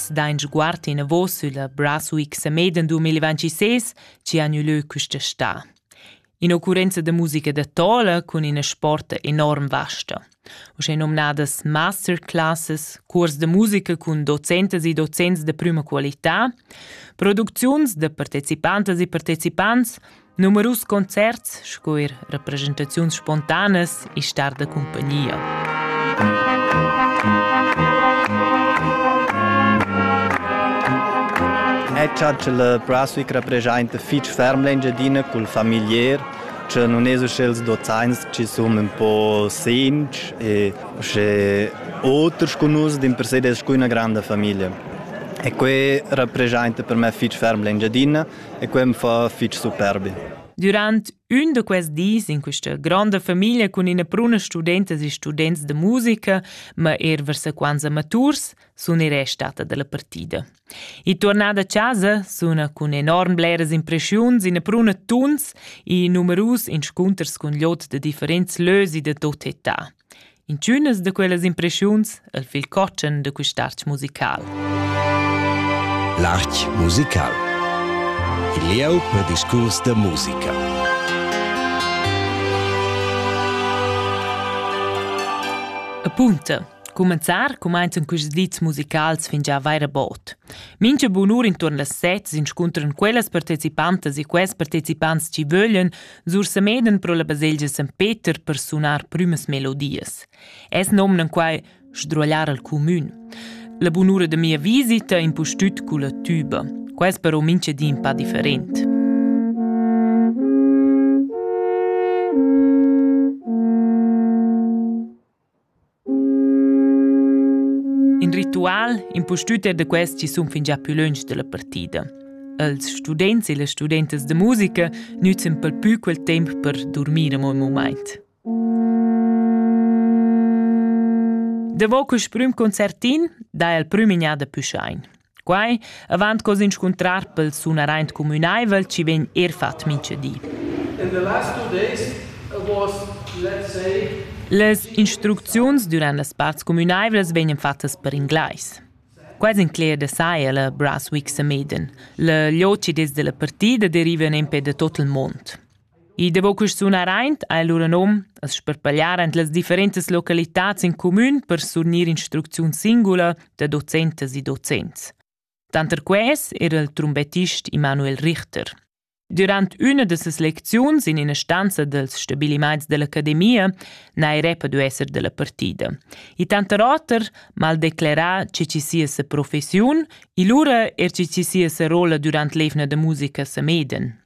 Nus dain sguard enavos sülla Braswick Sameden 2026, chi han gnü lö quista sta. In'occurrenza da musica da tola cun ina sport enorm vasta. Uschè nomnadas masterclasses, curs da musica cun docentas e docents da prüma qualità, producziuns da partecipantas e partecipants, Numerus concerts sco er representaziuns spontanas e star da cumpagnia. E cha la Braswick representa fich ferm l'Engiadina cul familier, che non es usche els dozains chi sun ün po sinci e usche oters cu nus din per se des scu üna granda famiglia. E que representa per me fich ferm l'Engiadina e quei mi fa fitg superbi. Durant ün da quels dis in questa granda famiglia cun ina bruna studentas e students de musica, ma er vers sequenza maturs, sun i restata dalla partida. E tornada a casa suna cun enorm bleras impressiuns ina bruna tuns e numerus inscunters cun lot de differents lösi de tot età. Intgünas da quellas impreschiuns e'l fil cotschen da quist'arch musical. L'arch musical. Il lieu per discurs da musica. Appunta. Cumenzar cumainzan quists dits musicals fin già vaira bod. Mincha bunur intuorn las set s'inscuntran quellas partecipantas e quels partecipants chi vöglian Sur Semeden pro la baselgia San Peter per sunar prümas melodias. Es nomnan quai sdruagliar al cumün. La bunura de mia visita impustüt culla tuba. Quest però minche di un pa different. In ritual impustüt er da quels chi sun fingià pü lönch da la partida. Els students e las studentas da musica nüzzen pel pü quel temp per durmir amo ün mumaint. Davo quist prüm concertin dà el prüm'gnada pü schain. Quai avant co s'inscuntrar pel sunaraint cumünaivel chi vegn eir fat mincha di. In the last two days was, let's say, Las instrucziuns durant las parts cumünaivlas vegnan fattas per inglais. Quasi in cler da saja la Brunswick Sameden. La lioci des della partida deriva nempe da tot il mond. I davo quist sunar aint ha el lura nom as sparpagliar ant las differentas localitats in cumün per surgnir instrucziun singula da docentas e docents. Tanter quels era il trumbettist Immanuel Richter. Durant üna da ses lecziuns in ina stanza dels stabiliments dell'academia n'ha el repa du esser della partida. E tanter oter mal declerà che ci sia sa professiun e lura er che ci sia sa rolla durant l'evna da musica sa meden.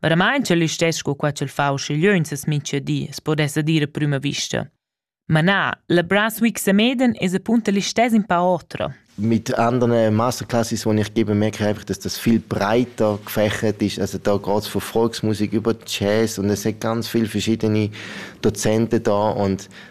Veramain ch'el listess sco qua ch'el fa uschigliö in ses mincha di as podessa dir a prüma vista. Ma na, la Brunswick Semeden es apunta listess in pa otra. Mit anderen Masterclasses, die ich gebe, merke ich einfach, dass das viel breiter gefächert ist. Also da geht es von Volksmusik über Jazz und es sind ganz viele verschiedene Dozenten da und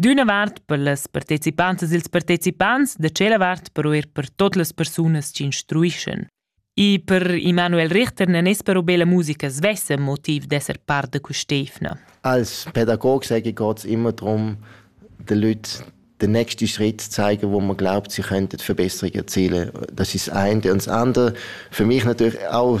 D'üna vart per las partecipantas e ils partecipants, da tschella vart però eir per tot las persunas chi instruischan. E per Emanuel Richter non es però be la musica svessa motiv d'esser part da quist'eivna. Als Pädagoge sage ich geht's immer darum, den Leuten den nächsten Schritt zu zeigen, wo man glaubt, sie könnten Verbesserungen erzielen. Das ist das eine. Und das andere, für mich natürlich auch